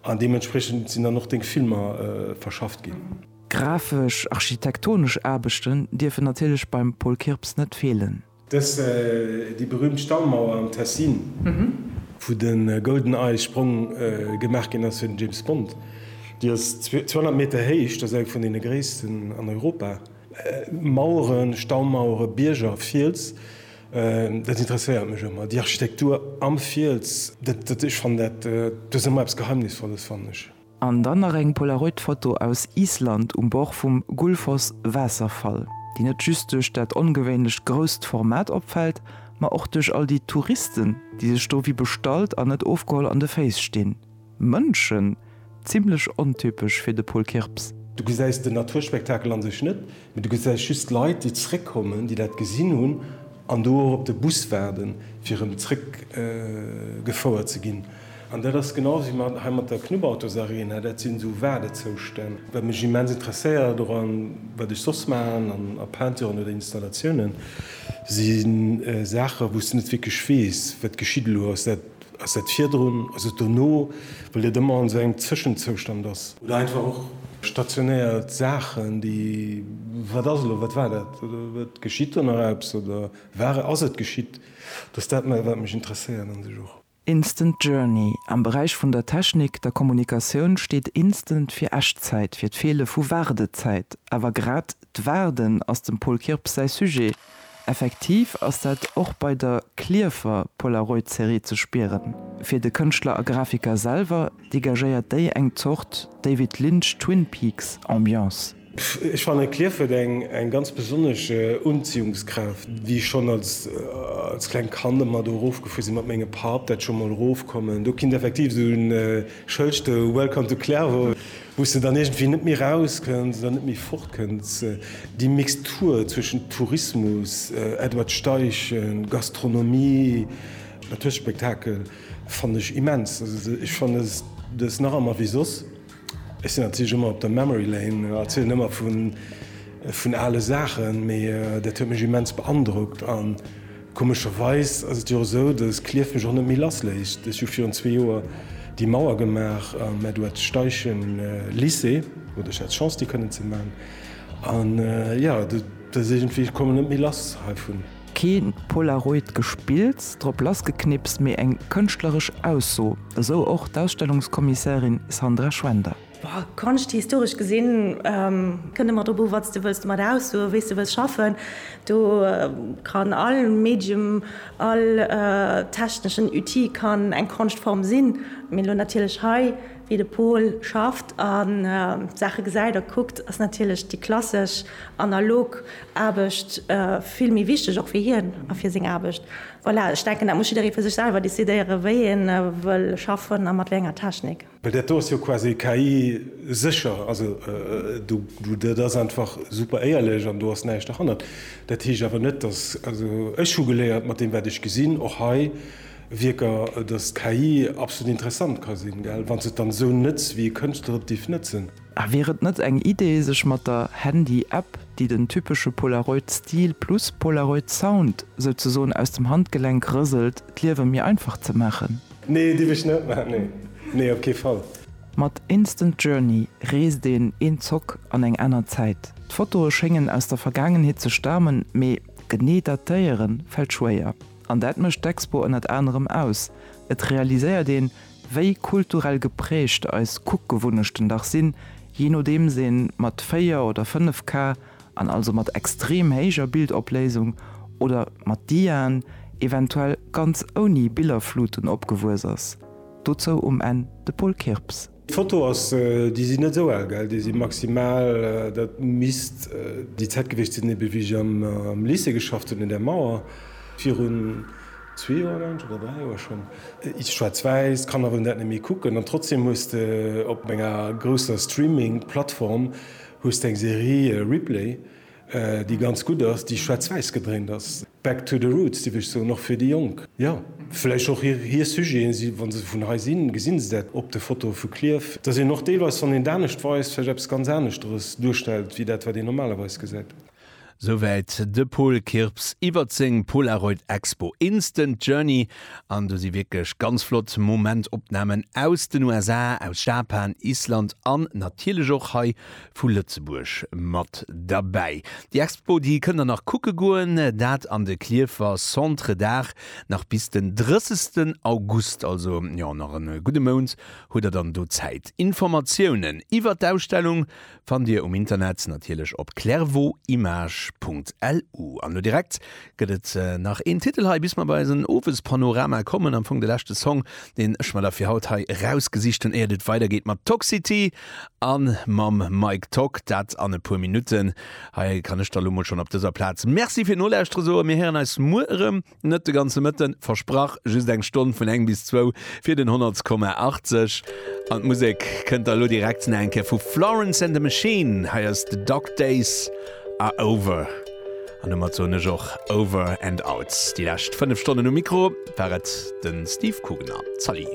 An deementspriechend sinn dann och deng Filmer verschafft ginn. Grafesch, architektonesch Aarbechten dierfen natierlech beim Paul Kirps net feelen. Dës déi berüümt Stallmauer am Tessin. Wou de Golden Eye Sprong gemaach ginn ass fir den James Bond. Déi ass 200 Meter héich, dat ass eng vun deene gréissten an Europa. Maueren, Staumauere, Bierger, Fiels. Dat interesséiert mech ëmmer, déi Architektur am Fiels. Dat, ech fannen dat, dat ass ëmmer eppes Geheimnisvolles, fannen ech. An dann nach eng Polaroid-Foto aus Island um Bord vum Gullfoss-Waasserfall, déi net just duerch dat ongewéinlecht grousst Format opfält, ma och duerch all déi Touristen, déi sech do wéi bestallt an net ofgeholl an de Féiss stinn. Mënschen, zimlech ontypesch fir de Paul Kirps. Du gesäis den Naturspektakel an sech net, mee du gesäis just d'Leit, déi zeréckkommen, déi dat gesinn hunn an do och op de Bus waarden, fir erëm zeréck gefouert ze ginn. An dat ass genau wéi mat hei mat der Knubautos Arena, dat sinn esou Waardezoustänn. Wat mech immens interesséiert och an wat ech soss maachen an a Peinturen oder Installatiounen, si Saachen, wou s de net wierklech weess, wat geschitt elo? Ass dat Ass dat virdrun? Ass et dono? Well et ëmmer an esou engem Zëschenzoustand ass. Oder einfach och stationéiert Saachen, déi, wat ass elo, wat war dat oder geschitt do nach eppes oder war, ass et geschitt? Dass dat méi wat mech interesséiert an sech och. Instant Journey, Am Beräich vun der Technik, der Kommunikatioun steet instant fir Echtzäit, fir d'Feele vu Waardezäit. Awer grad d'Waarden ass dem Paul Kirps säi Sujet. Effektiv ass dat och bei der Klierfer Polaroid-Serie ze spieren. Fir de Kënschtler a Grafiker selwer degagéiert déi eng Zort David Lynch Twin Peaks Ambiance. Ech fannen Klierf huet eng ganz besonnesch Unziehungskraaft wéi ech schon als kleng Kand emmer do erof gefuer sin mat mengem Papp, dat schon mol erof kommen do kinnt effektiv esou en Schëld stoun Welcome to Clairvaux. Wou se dann iergendwéi net méi raus kënnt oder net méi fort kënnt. Déi Mixtur zwëschent Tourismus, Edward Steichen, Gastronomie, natierlech Spektakel fannen ech immens. Also ech fanne dës nach ëmmer wéi soss. Ech sinn natierlech ëmmer op der Memory Lane, erzielen ëmmer vun ale Saachen, mee dat huet mech immens beandrockt. Komescherweis ass et jo esou, dass Clierf mech och net méi lass léisst. Ech hu virun zwee Joer déi Mauer gemaach, mä du hättst Steichen Lycée, oder ech hätt Chance déi kënnen ze maachen. An jo, dat ass iergendwéi, ech kommen net méi lass heivun. Keen Polaroid gespills, drop lassgeknippst, mee eng kënschtleresch Ausso, esou och d'Ausstellungskommissärin Sandra Schwender. Konscht, historesch gesinn, kënnt ëmmer drop u wat s de wëlls domat aussoen, wéi s de wëlls schaffen. Do kann all Medium, all techneschen Outil kann eng Konschtform sinn. Mee elo natierlech hei, wéi de Pol schafft a d'Saache gesäit a kuckt, ass natierlech déi klassesch, analog Aarbecht vill méi wichteg och fir hien a fir seng Aarbecht. Voilà, ech denken dat muss jidderee fir sech selwer decidéieren, wéi ee wëll schaffen a mat wéi enger Technik. Well dat do ass jo quasi KI-sécher. Also do, dat ass einfach super éierlech an do ass näischt derhannert. Dat heescht awer net, dass, also ech hu geléiert mat deem wat ech gesinn, och hei Wierker, dass d'KI absolut interessant ka sinn, wa se et dann esou nëtz, wéi e Kënschtler et dierf nëtzen. A wier et net eng Idee, sech mat der Handy-App, déi den typesche Polaroid-Stil plus Polaroid-Sound souzesoen aus dem Handgelenk rëselt, d'Liewe méi einfach ze maachen? Nee, dierf ech net maan, nee. Nee, op kee Fall. Mat Instant Journey reest een een Zock an eng aner Zäit. D'Fotoe schéngen aus der Vergaangenheet ze stamen, mee genee datéiere fält schwéier. An dat mécht d'Expo ënnert anerem aus. Et realiséiert een, wéi kulturell geprägt eis Kuckgewunnechten dach sinn, jee nodeems ee mat 4 oder 5K. an also mat extrem héijer Bildopléisung oder mat Diaen, eventuell ganz ouni Billerfluten, opgewuess ass. Dozou um Enn de Paul Kirps. D'Foto ass, déi sinn net esou al, gell, déi si maximal, dat misst déi Zäit gewiescht sinn, ebe wéi ech am Lycée geschafft hunn, un der Mauer, virun zwee Joer, mengen ech, oder dräi Joer schonn, iis schwaarz-wäiss, d'Kanner wëllen dat net méi kucken, an trotzdem hues de op enger grousser Streaming-Plattform Hues deng Serie Ripley, déi ganz gutt ass, déi schwaarz-wäiss gedréint ass, back to the roots dierf ech soen, och fir déi Jonk. Jo, vläicht och hir Sujeten, si wa se vun hei sinn, gesinn se dat op de Fotoe vu Clierf, dass een och deelweis, wann een d'anescht weist, vläicht eppes ganz aneschteres duerstellt wéi dat wat een normalerweis gesäit. Souwäit de Paul Kirps iwwert seng Polaroid Expo Instant Journey an do si wierklech ganz flott Momentopnamen aus den USA, aus Japan, Island an natierlech och hei vu Lëtzebuerg mat derbäi. Déi Expo déi kënnt der nach kucke goen, dat an de Klierfer Centre d'Art nach bis den 30 August, also jo nach e gudde Mount hutt der dann do Zäit. Informatiounen iwwert d'Ausstellung Fannt dir um Internet natierlech op clairvauximage.lu. An elo direkt gëtt et nach een Titel hei, bis mer bei eisen Owespanorama kommen, am Fong de leschte Song, deen ech mer da fir haut hei erausgesicht hunn, éiert et weidergeet mat Toxity a mam Mike Tock. Dat an e puer Minutten. Hei kann ech da lo mol schonn op dëser Plaz Merci fir d'Nolauschteren soen. Mir héieren eis muer erëm. Net de ganze Mëtten, versprach, just eng Stonn vun eng bis zwou fir den Honnertskomma 80. An d'Musek kënnt da lo direkt nach eng Kéier vu Florence and the Machine. Hei ass The Dog Days Are Over. An domat soen ech och Over and Out. Déi lescht fënnef Stonnen um Mikro war et de Steve Coogan a Zali.